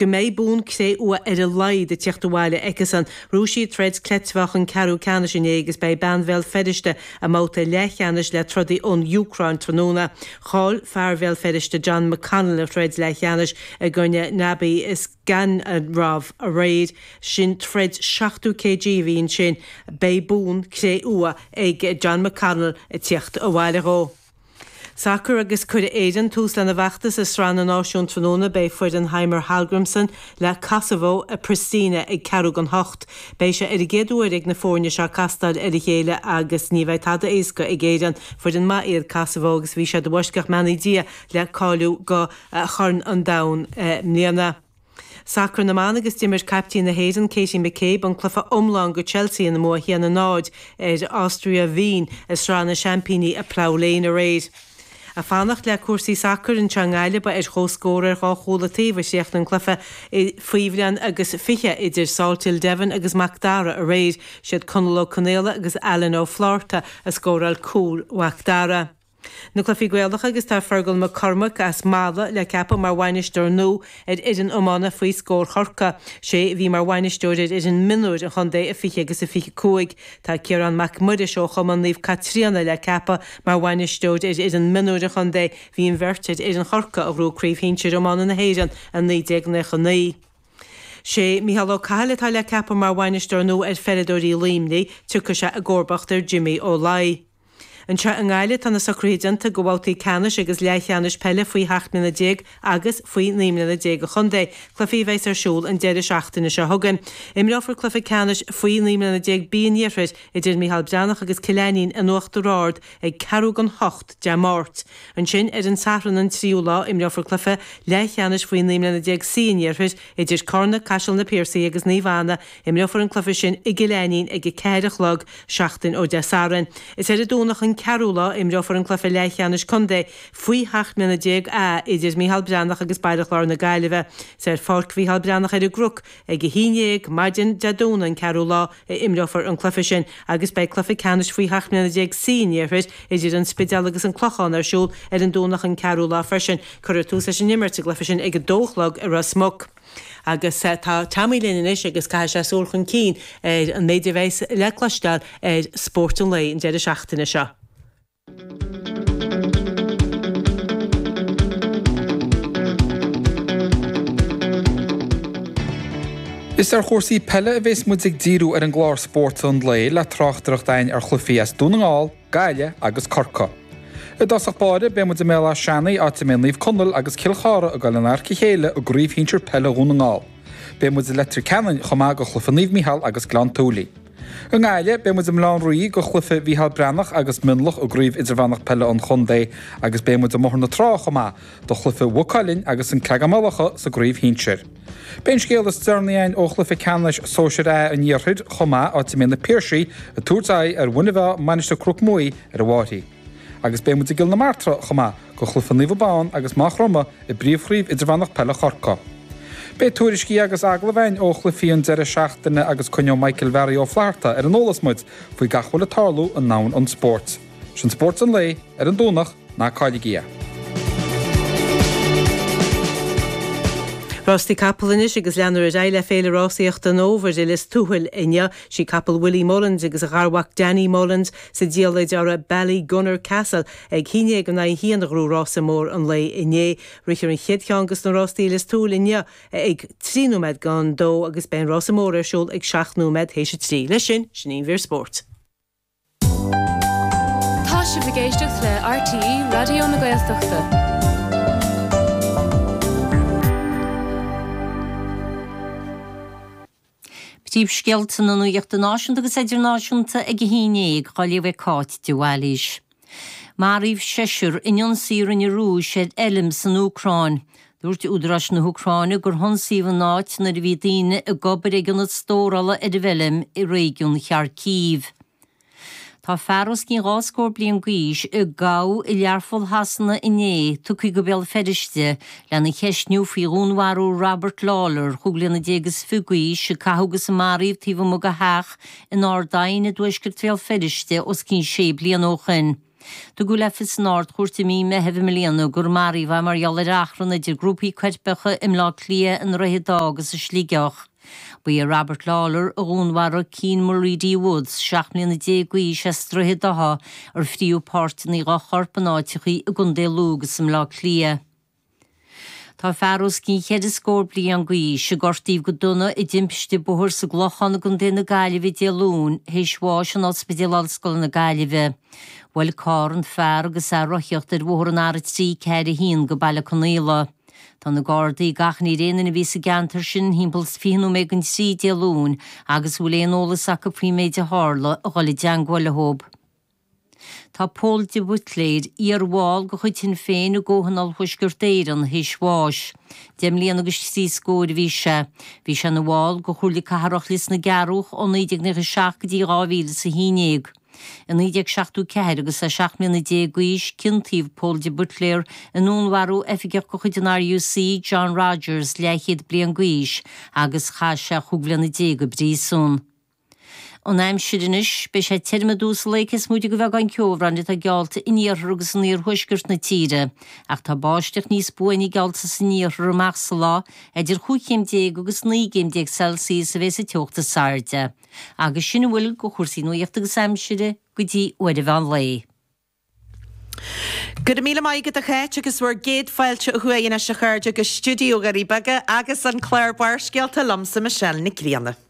go mbeidh bonn cré-umha ar a laghad ag tíocht abhaile aici sin. Ghnóthaigh sí a troid cleitmheáchain ceathrú ceannais inné agus beidh bean Bhéal Feirste i mbabhta leathcheannais le trodaí ón Úcráin tráthnóna. Chaill fear Bhéal Feirste John McConnell a throid leathcheannais i gcoinne Nabi Isgandarov aréir. Sin troid 70 kg a bhí ansin. Beidh bonn cré-umha ag John McConnell ag tíocht abhaile dhó. Sacar agus cuirfidh Éirinn tús lena bhfeachtas i Sraith na Náisiún tráthnóna. Beidh foireann Heimir Hallgrímsson le Kosovo i Pristina ag ceathrú don hocht. Beidh sé ar an gcéad uair ag na foirne seo castáil ar a chéile agus ní bheidh tada éasca ag Éirinn. Foireann maith iad Kosovo agus bhí siad i bhfoisceacht mbeannaí Dia le cáiliú do Chorn an Domhain i mbliana. Sacar na mBan agus d'imir caiptín na hÉireann, Katie McCabe, an cluiche iomlán do Chelsea ina mbua 1 0 ar Austria Wien i Sraith na Seaimpíní i Plough Lane aréir. Ag fanacht le cúrsaí sacair anseo i nGaillimh ba ar chomhscór ar dhá chúl an taobh a chríochnaigh an cluiche faoi bhliain agus fiche idir Salthill Devon agus Mac Dara aréir. Siad Conall Ó Conaola agus Alan Ó Flátharta a scóráil cúil Mhac Dara. Na Cluichí Gaelacha agus tá Fergal Mac Cormaic as Mala le ceapadh mar bhainisteoir nua ar fhoireann iomána faoi scór Chorcaí. Sé a bhí mar bhainisteoir ar fhoireann mionúir an chontae i 20 agus i 25. Tá Ciarán Mac Muiris ó Chumann Naomh Caitríona le ceapadh mar bhainisteoir ar fhoireann mionúir an chontae. Bhí an bheirt ar fhoireann Chorcaí a ghnóthaigh Craobh Shinsir Iomána na hÉireann i 1999. Sé Micheál Ó Cathail atá le ceapadh mar bhainisteoir nua ar pheileadóirí Luimnigh. Tiocfaidh sé i gcomharbacht ar Jimmy Ó Laidhe. Anseo i nGaillimh tá na socruithe déanta do bhabhtaí ceannais agus leathcheannais peile faoi sheacht mbliana déag agus faoi naoi mbliana déag an chontae. Cluichí a bheas ar siúl an deireadh seachtaine seo chugainn. Imreofar cluiche ceannais faoi naoi mbliana déag B an iarthair idir Micheál Breathnach agus Cill Ainnín in Uachtar Ard ag ceathrú don hocht Dé Máirt. Ansin ar an Satharn an 3ú lá imreofar cluiche leathcheannais faoi naoi mbliana déag C an iarthair idir Carna, Caiseal na Piarsaigh agus Naomh Anna, Imreofar an cluiche sin i gCill Ainnín ag a ceathair a chlog seachtain ó Dé Sathairn. Is ar an Domhnach an 4ú lá a imreofar an cluiche leathcheannais contae faoi sheacht mbliana déag A idir Micheál Breathnach agus Baile Chláir na Gaillimhe. Is ar Pháirc Mhicheál Breathnach ar an gCnoc ag a haon dhéag maidin Dé Domhnaigh an 4ú lá a imreofar an cluiche sin agus beidh cluiche ceannais faoi sheacht mbliana déag C an iarthair idir An Spidéal agus An Clochán ar siúl ar an Domhnach an 4ú lá freisin. Cuirfear tús leis an imirt sa gcluiche sin ag a dó a chlog i Ros Muc. Agus tá Teamhair linn anois agus caithfidh sé súil chun cinn ar an méid a bheas le cloisteáil ar Spórt an Lae an deireadh seachtaine seo. Is ar chúrsaí peile a bheas muid ag díriú ar an gclár Spórt an Lae le tráchtaireacht againn ar chluichí as Dún na nGall, Gaillimh agus Corcaigh. I dtosach báire, beidh muid i mBéal Áth Seanaigh, áit a mbeidh Naomh Conaill agus Cill Chartha ag dul in adharca a chéile i gcraobh shinsir peile Dhún na nGall. Beidh muid i Leitir Ceanainn chomh maith do chluiche Naomh Micheál agus Gleann tSúilí. I nGaillimh, beidh muid i mBaile Átha an Rí do chluiche Mhicheál Breathnach agus Mionlach i gCraobh Idirmheánach Peile an Chontae agus beidh muid i mBóthar na Trá chomh maith do Chluiche Mhaigh Cuilinn agus An Creagán-Maigh Locha sa gcraobh shinsir. Beidh an scéal is deireanaí againn ó chluiche ceannais Sóisear A an Iarthair chomh maith, áit a mbeidh Na Piarsaigh ag tabhairt aghaidh ar Mhuine Mheá, Mainistir Chnoc Muaidh ar an bhFairche. Agus beidh muid i gCill na Martra chomh maith, do chluiche Naomh Abán agus Maigh Chromtha i bPríomhchraobh Idirmheánach Peile Chorcaí. Beidh tuairiscí agus agallaimh againn ó chluichí an deireadh seachtaine agus coinneoidh Michael Bharry Ó Flatharta ar an eolas muid faoi gach a bhfuil ag tarlú i ndomhan an spóirt. Sin Spórt an Lae ar an Domhnach, ná cailligí é! Rástaí capall anois agus leanfar ar aghaidh le Féile Rásaíochta an Fhómhair i Lios Tuathail inniu. Sí capall Willie Mullins agus a gharmhac Danny Mullins sa diallait uirthi Ballygunner Castle ag a haon déag in aghaidh a haon a ghnóthaigh rása mór an lae inné. Rithfear an chéad cheann des na rástaí i Lios Tuathail inniu ag trí nóiméad don dó agus beidh an rása mór ar siúl ag seacht nóiméad théis a trí. Leis sin, sin í an mhír spóirt. Tá sibh ag éisteacht le RTÉ Raidió na Gaeltachta. Príomhscéalta na nuachta náisiúnta agus idirnáisiúnta ag 11, á léamh ag Cáit de Bhailís. Maraíodh seisear in ionsaí a rinne an Rúis ar fheilm san Úcráin. Dúirt údaráis na hÚcráine gur hionsaíodh an áit nuair a bhí daoine ag obair ag ionad stórála ar an bhfeilm i réigiún Kharkiv. Tá fear os cionn dhá scór bliain d'aois, a gabhadh i Learpholl Shasana inné, tugtha go Béal Feirste lena cheistniú faoi dhúnmharú Robert Lawlor, chúig bliana déag is fiche d'aois, a caitheadh agus a maraíodh taobh amuigh de theach in Ardoyne i dtuaisceart Bhéal Feirste os cionn sé bliana ó shin. Tugadh le fios san Ard-Chúirt i mí Meithimh i mbliana gur maraíodh é mar gheall ar achrann idir grúpaí coirpeacha i mBleá Cliath, i nDroichead Átha agus i Sligeach. Ba é Robert Lawlor a dhúnmharaigh Keane Mulready-Woods, 17 mbliana d'aois, as Droichead Átha, ar frítheadh páirteanna dá chorp in áiteachaí i gContae Lú agus i mBleá Cliath. Tá fear os cionn cheithre scór bliain d'aois, a gortaíodh go dona i dtimpiste bóthair sa gClochán i gContae na Gaillimhe Dé Luain, théis bháis in Ospidéal Ollscoile na Gaillimhe. Bhuail carr an fear agus é ag rothaíocht ar bhóthar an R341 go Baile Conaola. Tá na Gardaí ag achainí ar aon duine a bhí sa gceantar sin timpeall 20 nóiméad don 3 Dé Luain agus a bhfuil aon eolas acu faoin méid a tharla, a dhul i dteagmháil leo. Tá Pól de Buitléir, iar-bhall de chuid Shinn Féin i gComhthionól Thuaisceart Éireann, théis bháis. Deich mbliana agus trí scór a bhí sé. Bhí sé ina bhall de Chomhairle Cathrach Lios na gCearrúch ó 1997 go dtí 2011. I 1974, agus é seacht mbliana déag d'aois, ciontaíodh Pól de Buitléir i ndúnmharú oifigeach de chuid an RUC, John Rogers, leathchéad bliain d'aois, agus chaith sé chúig bhliana déag i bpríosún. An aimsir anois, beidh sé tirm i dtús an lae cé is móite de bheagán ceobhráin atá geallta in iarthar agus in iarthuaisceart na tíre, ach tá báisteach níos buaine geallta san iarthar amach sa lá, idir chúig chéim déag agus naoi gcéim déag Celsius a bheas an teocht is airde. Agus sin a bhfuil de chúrsaí nuachta agus aimsire go dtí uair mheán lae. Go raibh míle maith agat a Cháit agus bhur gcéad fáilte ó thuaidh anois a chairde go stiúideo Dhoirí Beaga agus an clár Barrscéalta liomsa Michelle Nic Grianna.